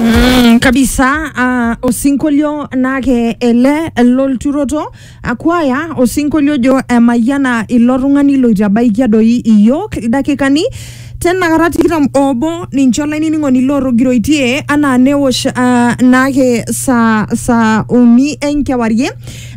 Mm, kabisa uh, osinkolio naake ele lolturoto akwaya osinkolio jo emayiana ilo tung'ani loitabaikia doi iyiook ildakikani tenakata tikitam obo ninche olainining'oni lootogiroitie anaa newosh uh, naake saa saa uni enkewarie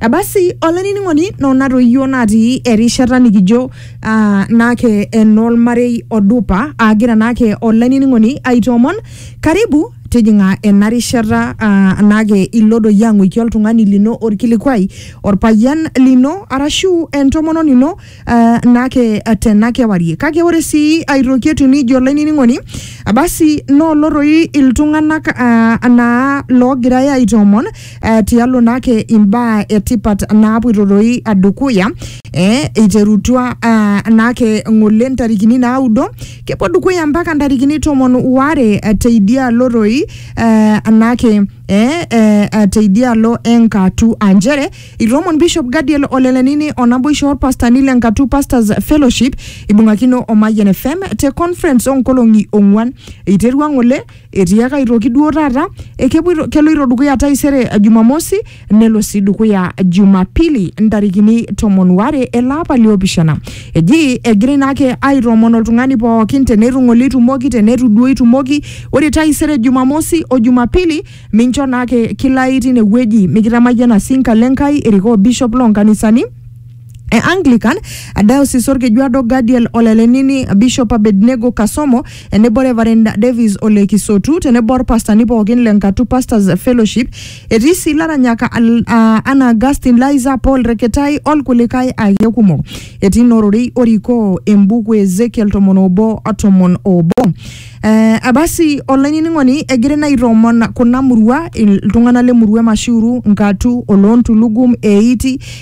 basi olainining'oni nona toyio natii erishata nikijo Ah, naake enolmarei odupa aagira naake olainining'oni aitoomon karibu tijing'a ena rishata ah, naake ilo doi ang'uiki oltung'ani lino orkilikuai orpayian lino arashu entomononi ino ah, naake ah, tena kewarie kake ore sii aitoki etiu nijo olainining'oni basi noolo toi iltung'anak ah, naa loogirai aitoomon eh, tialo naake imbaa etipat naapoito doi dukuya eh, eiterutua ah, naake ng'ole ntarikini naudo kepuo dukuya mpaka ntarikini tomon waare eh, teidialo doi eh, naake eh, eh, eh, teidialo enkatu aa nchere itomon bishop gadiel olelenini onaboisho orpastani le nkatu pastors fellowship ibung'akino o mayian fm te conference oonkolong'i ong'uan eiterua ng'ole Etiaka aitoki duo taata ekepuoito keloito dukuya taisere Jumamosi nelo sii dukuya Jumapili ntarikini tomon ware ele apa liopishana. Eji egirai naake aitoomon oltung'ani pookin teneitu ng'ole itumoki teneitu duo itumoki ore taisere Jumamosi o Jumapili mincho naake kilai tine wueji mikitamayiana sii nkalo Enkai irikoo bishop loo nkanisani e Anglican, Diocese Orkejuado Gadiel Olelenini, Bishop Abednego Kasomo, enebo Reverend Davis Ole Kisotu, tenebo orpastani pookin le Nkatu Pastors Fellowship. Etii sii laranyak al- ah, Anna Augustine Liza Paul Reketai olkulikae ake kumok. Etii nororei orikoo embuku e Ezekiel tomon obo o tomon obo. Eh, abasi olainining'oni egira ina aitoomon kuna murua iltung'anak le murua e Mashiuru, Nkatu, Oloontulugum, Eiti,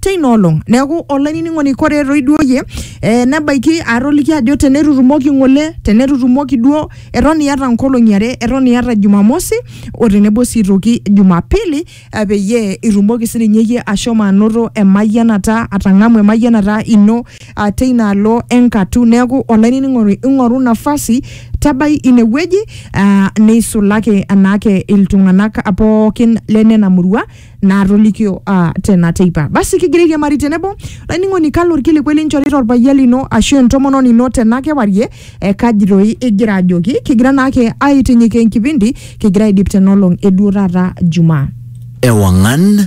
teina olong neeku olainining'oni kore etoiduoyie eh, nebaiki aatoliki ajo tenetutumoki ng'ole tenetutumoki duo eton iyata nkolong'i are eton iyata jumamosi o tenebo sii toki jumapili eh, peyie itumoki sininye iyie ashomo anoto emayianata atang'amu emayianata ino ah, teina alo enkatu neeku olainining'oni ing'oru nafasi tabai inewueji ah, neisulaki anaake iltung'anak pookin lenena murua naatolikio ah, tena teipa basi kigira airiamari tenebo laining'oni kalo orkilikuai linchorita orpayian lino ashu entomononi ino tena kewarie eh, kaji doi igira ajoki kigira naake aitinyik enkipindi kigira aidip tenolong eduo taata jumaa Ewangan